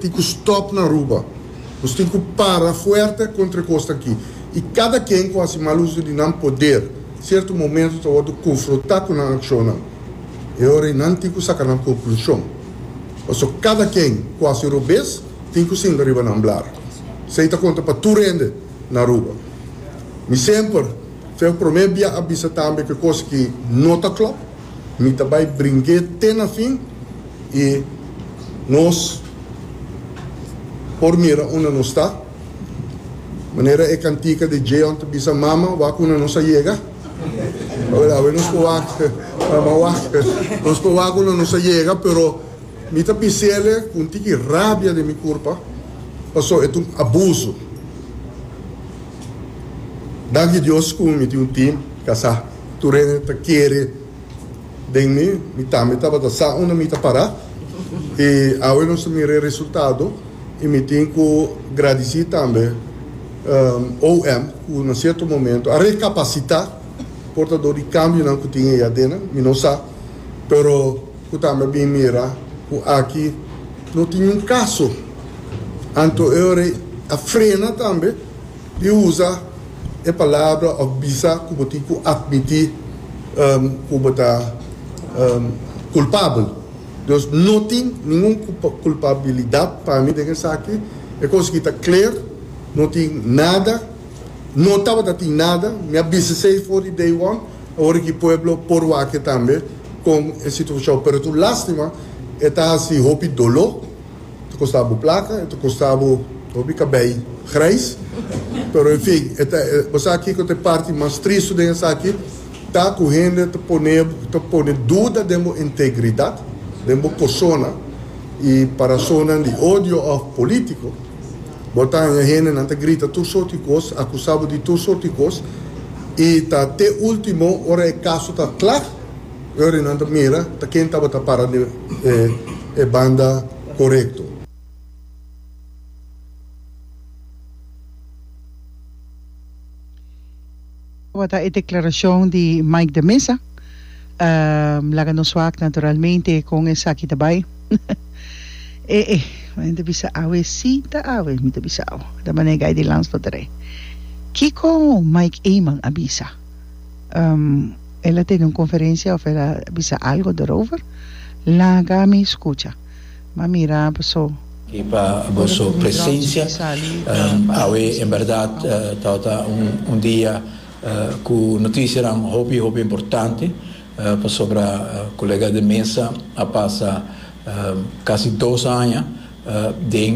Tin cu stop na Aruba. Nos tin cu para fuerte contra e cosnan aki. Y cada quien cu haci mal uzo di nan poder, cierto momento ta wordo confronta cu nan accionnan. E ora y nan tin cu saca nan conclusion. Paso cada quien cu haci robes tin cu sinta riba nan blar. Esey ta conta pa tur hende na Aruba. Mi semper, feo prome bia a bisa tambe cu e cos aki no ta clop. Mi ta bai bring'é te na fin i nos por mira unda nos ta. Manera e kantika di Djeon ta bisa Mama, wak unda nos a yega. Oe awe nos por wak, Mama wak. Nos por wak unda nos a yega, pero mi ta bis'ele ku un tiki rabia den mi kurpa, paso e ta un abuso. Danki Dios ku mi tin un tim kasá. Tur hende ta kere den mi, mi tambe tabata sa unda mi ta para. I awe nos ta mira e resultado i mi tin ku gradisí tambe OM ku na sierto momento a rekapasitá portador di kambionan ku tin ei adennan, mi no sa, pero ku tambe a bin mira ku aki no tin niun kaso. Anto e ora ei a frena tambe. Di usa e palabra òf bisa ku bo tin ku atmití ku bo ta kulpabel. Dios no tin ningun kulpabilidat pa mi den esaki. E kos aki ta kler, no tin nada, no tabata tin nada. Mi a bisa esei for di day one. Awor aki pueblo por wak tambe kon e situashon. Pero tur lástima e ta hasi hopi doló Ta kosta bo plaka, e ta kosta bo hopi kabei grijs, pero en fin, e ta, bo sa kiko ta e parti mas tristu den esaki? Ta ku hende ta pone, ta pone duda den bo integridat, den bo persona, i pa rasonnan di odio òf polítiko, bo ta haña hendenan ta grita tur sorti kos, akusá bo di tur sorti kos, i ta te último, ora e kaso ta kla, Uri nan ta mira ta ken tabata para den e banda korekto. Esaki tabata e deklarashon di Mike de Meza. Laga nos wak naturalmente kon esaki ta bai. E e. Mi ta bisa awe si ta awe, mi ta bisa awe. Ta manera Guy de Lans lo ta rei. Kiko Mike Eman a bisa? um el a tene un conferencia of el a bisa algo derover laga mi scucha ma mira boso. Di pa boso presencia um awe en berdad tawata un dia cu noticianan hopi hopi importante pasobra colega de mesa a pasa casi dos aña den